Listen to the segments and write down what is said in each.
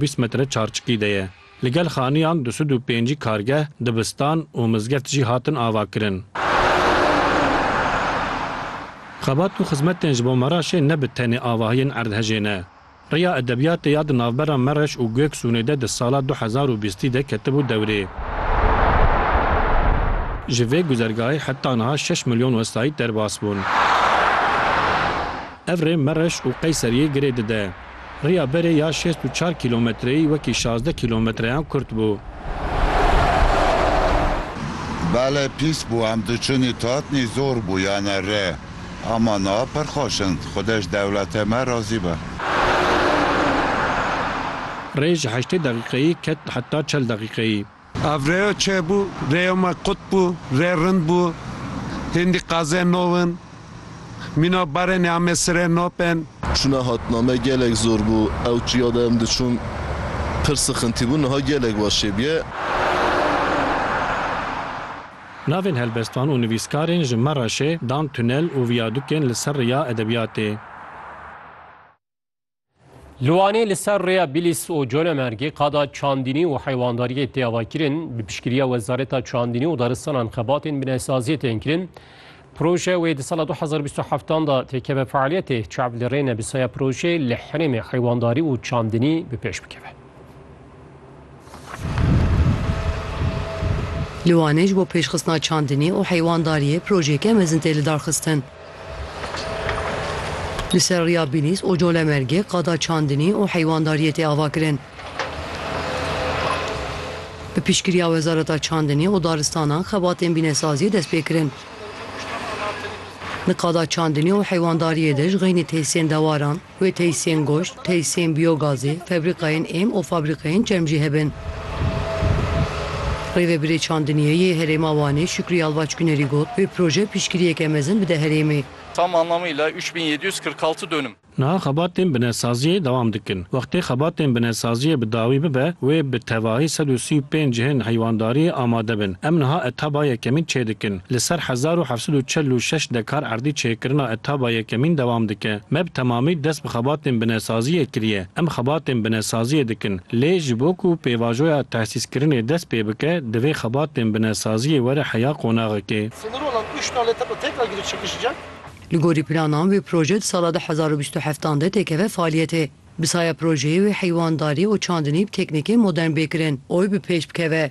Bîst metre çarçikî de ye. Li gel xaniyan du sed û pêncî kargeh, dibistan û mizgeft jî hatin avakirin. Xebat û xizmetên ji bo Meraşê ne bi tenê avahiyên erdhejê ne. Riya edebiyatê ya di navbera Mereş û Gueksûnê de di sala du hezar û bîstî de ketibû dewrê. Ji vê guzergahê heta niha şeş milyon wesayît derbas bûn. Ev rê Mereş û Qeyseriyê girê dide. Riya berê ya şêst û çar kîlometreyî wekî şazdeh kîlometreyan kurt bû. Bale pîs bû, em diçûnî tatnî zor bû yane re. Ama niha pir xweş in. Xwude ji dewlete me razî be. Rê ji heştê deqîqeyî ket heta çel deqîqeyî. Ev rêyo çê bû, rêyo me qut bû, rê rind bû, hêndî qazê no in, mîna barê nê Amê Sirê no bên. Çûna hatina me gelek zor bû, ew çiya de em diçûn pir sixintî bû, niha gelek baş çê bûye. Navên helbestvan û nivîskarên ji Mereşê dan tunel û viyadûkên li ser rêya edebiyatê. Li Wanê li ser rêya Bîlîs û Colemêrgê qada çandînî û heywandariyê tê avakirin. Bi piştgiriya Wezareta Çandînî û Daristanan xebatên binesaziyê tên kirin. Proje wê di sala 2027 da têkeve fealiyetê. Çav li rê ne bi saya projeyê li herêmê heywandarî û çandînî bi pêş bikeve. Li Wanê ji bo pêşxistina çandinê û heywandariyê projeyeke mezin tê lidarxistin. Li ser rêya Bîlîs û Colemergê qada çandinî û heywandariyê tê avakirin. Bi piştgiriya Wezareta Çandinê û Daristanan xebatên bînesaziyê dest pê kirin. Di qada çandinê û heywandariyê de ji xeynî tesîyên dewaran, Wê tesîyên goşt, tesîyên biyogazê, febrîkayên êm û fabrîkeyên çerm jî hebin. Rêvebirê Çandiniyê yê Herêma Wanê Şükrî Yalvaç Günerî got, Vê proje piştgiriyeke mezin bide herêmê. Tam anlamıyla üç bin yedi yüz kırk altı dönüm. Niha xebatên binesaziyê dewam dikin. Wextê xebatên binesaziyê bi dawî bibe, wê bi tevahî sed û sî û pênc cihên heywandariyê amade bin. Em niha etaba yekemîn çêdikin. Li ser hezar û heft sed û çil û şeş dekar erdî çêkirina etaba yekemîn dewam dike. Me bi temamî dest bi xebatên binesaziyê kiriye. Em xebatên binesaziyê dikin. Lê ji bo ku pêvajoya tehsîskirinê dest pê bike, divê xebatên binesaziyê were heya qonaxekê. Li gorî planan vê proje di sala du hezar û bîst û heftan de têkeve faaliyetê. Bi saya projeyê wê heywandarî û çandinî bi teknîkên modern bê kirin û bi pêş bikeve.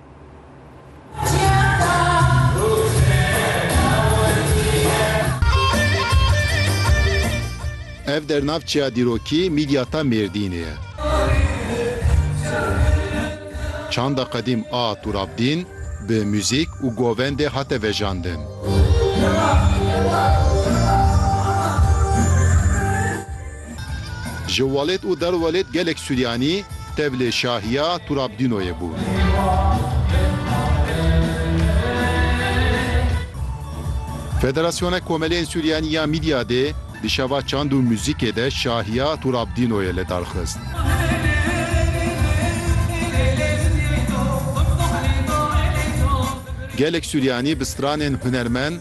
Ev dernavçeya dîrokî Mîdyata Mêrdînê ye. Çanda qedîm a Turabdîn bi muzîk û govendê hate vejandin. Ji welêt û derwelêt gelek Suryanî tevlê şahiya Turabdînoyê bûn. Federasyona Komeleyên Suryanî ya Mîdyadê di şeva çand û muzîkê de şahiya Turabdînoyê li dar xist. Gelek Suryanî bi stranên hunermend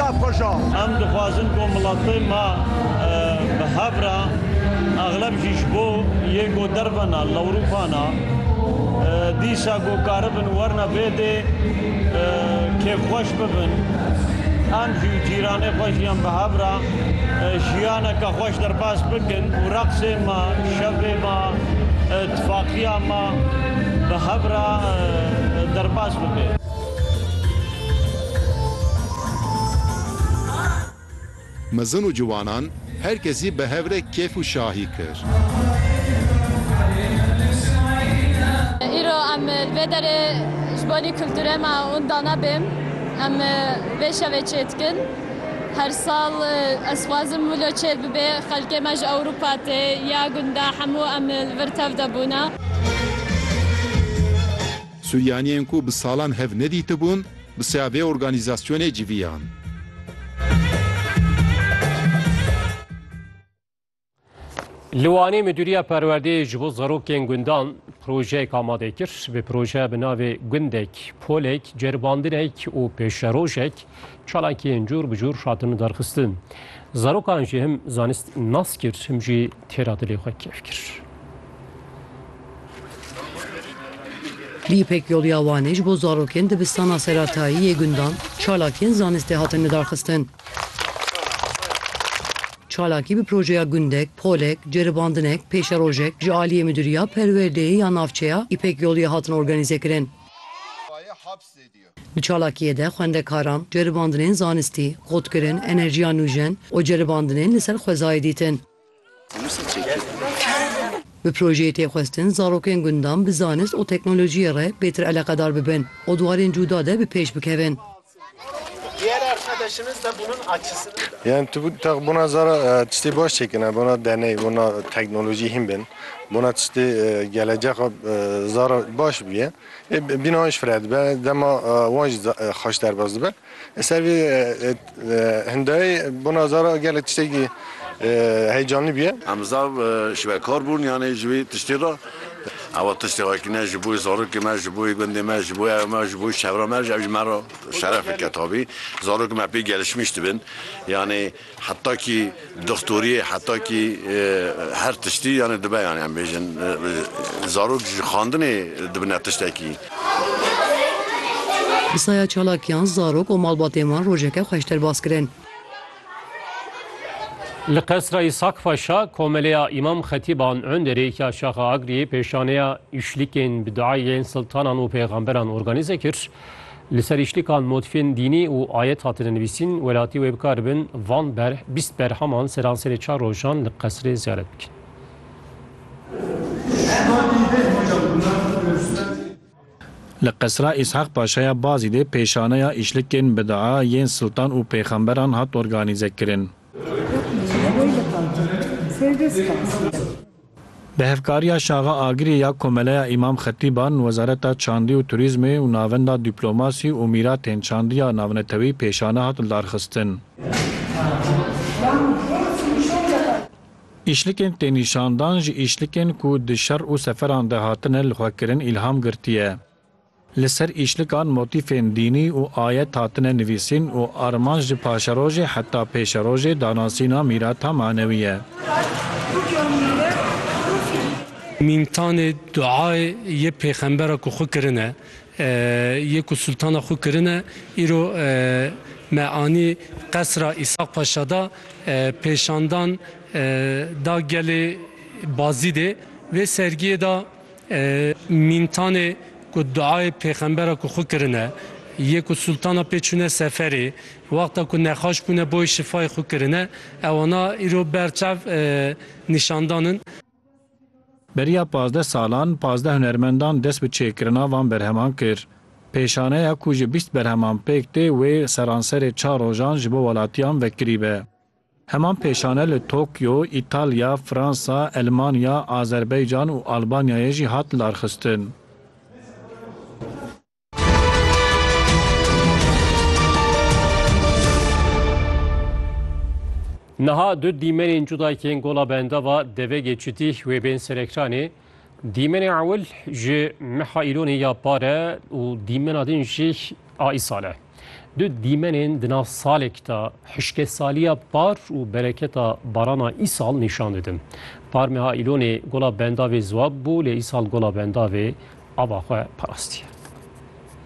daxweja. Em dixwazin ku miletê me bi hev re exleb jî ji bo yê ku derve ne li Ewropa ne dîsa ku karibin werine vê dê kêfxweş bibin. Em jî û cîranê xwe jî em bi hev re jiyaneke xweş derbas bikin û reqsê me, şevê me, tifaqiya me bi hev re derbas bibe. Mezin û ciwanan her kesî bi hev re kêf û şahî kir. Îro em li vê derê ji bo kulturê me unda nebêm. Em vê şevê çê dikin. Her sal ez dixwazim wilo çê bibe. Xelkê me ji Ewropa tê ya gunda hemû em li vir tev de bûne. Suryaniyên ku bi salan hev nedîtibûn bi saya vê organîzasyonê civiyan. Li Wanê Midûriya Perwerdeyê ji bo zarokên gundan projeyek amade kir. Bi projeya bi navê Gundek, Polek, Ceribandinek û Pêşerojek çalakiyên cûr bi cûr hatin derxistin. Zarokan jî him zanist nas kir him jî têra dilê xwe kêf kir. Li Îpekyolûya Wanê ji bo zarokên dibistana seratayî yê gundan çalakiyên zanistê hatin lidarxistin. Çalakî bi projeya gundek, polek, ceribandinek, pêşerojek ji aliyê Midûriya Perwerdeyê ya Navçeya Îpekyolûyê hatin organîzekirin. Di çalakiyê de xwendekaran ceribandinên zanistî, xurtkirin, enerjiya nûjen û ceribandinên li ser xwezayê dîtin. Bi projeyê tê xwestin zarokên gundan bi zanist û teknolojiyê re pêtir eleqedar bibin û di warên cûda de bi pêş bikevin. Yan tu tax bona zara tiştê baş çêkirine, bona deney, bona teknolojî hîn bên, bona tiştê gelecexa zara baş bûye. Ê bîna wan ji fire dibe, dema wan jî xweş derbas dibe. Li ser vê hindayê bona zara gelek tiştekî heyecanlî bûye. Em zav ji we kar bûn yanê ji vê tiştê re. Ew tiştê wekî ne ji bo zarokê me, ji bo gundê me, ji bo evê me, ji bo çevra me, ew ji me re şeref eke tabî. Zarokê me pê gelişmîş dibin yanê. Heta kî doxtoriyê heta kî her tiştî yanê dibe yanê em bêjin zarok ji xandinê dibine tiştekî. Bi saya çalakiyan zarok û malbatên wan rojeke xweş derbas kirin. Li Qesra Îshak Paşa Komeleya Îmam Xetîban Underê ya Şaxa Agriyê pêşaneya Îşlikên bi duayên siltanan û pêxemberan organîze kir. Li ser îşlikan modfên dînî û ayet hatine nivîsîn, welatî wê bikaribin van berh bîst berhaman seranserê çar rojan li qesrê ziyaret bikin. Li qesra Îshak Paşa ya Bazîdê pêşaneya îşlikên bidaa yên siltan û pêxemberan hat organîzekirin. Bi hevkariya Şaxa Agirê ya Komeleya Îmam Xetîban, Wezareta Çandî û Turîzmê û Navenda Dîplomasî û Mîratên Çandiya Navnetewî pêşane hat lidarxistin. Îşlikên tênîşandan ji îşlikên ku di şer û seferan de hatine lixwekirin îlham girtiye. Li ser îşlikan motîfên dînî û ayet hatine nivîsîn û armanc ji paşerojê heta pêşerojê danasîna mîrata manewî ye. Mîmtanê duayê yê pêxembera ku xwe kirine, yê ku sultana xwe kirine îro me anî qesra Îshaq Paşa de pêşandan da gelê Bazîdê. Vê sergiyê de Mîntanê ku duayê pêxembera ku xwe kirine yê ku sultana pê çûne seferê wexta ku nexaş bûne boyê şifayê xwe kirine ew ana îro ber çav nîşandan in. Beriya pazdeh salan pazdeh hunermendan dest bi çêkirina van berheman kir. Pêşaneya ku ji bîst berheman pêk tê wê seranserê çar rojan ji bo welatiyan vekirî be. Heman pêşane li Tokyo, Îtalya, Fransa, Elmanya, Azerbeycan û Albanyayê jî hat larxistin. Niha du dîmenên cuda yên Gola Bendava devegê çitî wê bên serekranê. Dîmenê ewil ji meha îlonê ya pare û dîmena din jî a îsale. Du dîmenên di nav salek de hişkesaliya par û bereketa barana îsal nîşan didin. Par meha Îlonê gola bendavê ziwab bû lê îsal gola bendavê ava xwe parastiye.